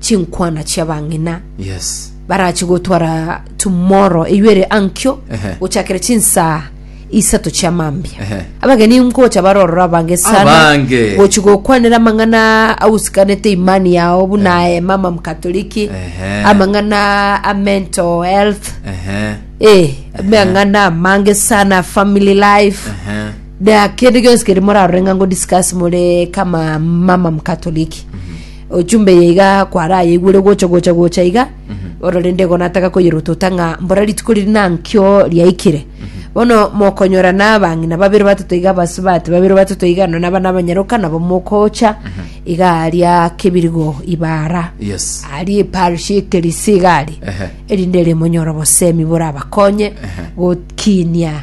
chinkwana chia bang'ina Yes. barache gotwara tomorrow eywo ere ankio Ehe. gochakera chinsaa isato chia mambia Ehe. abageni nkocha barorora abange sana Abange. gochi gokwanera amang'ana agusikanete imani yao buna eh, mama mkatoliki Ehe. amang'ana a mental health Ehe. eh, amang'ana amange sana family life Ehe. na kende gionsi keri morarore ng'a ngodiscuss more kama mama mkatoliki ochumbe eye iga kwarayeigwere gocha gocha gocha iga bono rende igo nataka koyerotota ng'a mbora rituko riria nankio riaikire bono mokonyora na abang'ina babere batato iga abasubati babere batato iga nonya naba nabanyaroka nabo mokocha iga aria kebirigo ibara yes aria eparish ekerisia iga aria Ehe. erinde rimonyore obosemi borabakonye gokinia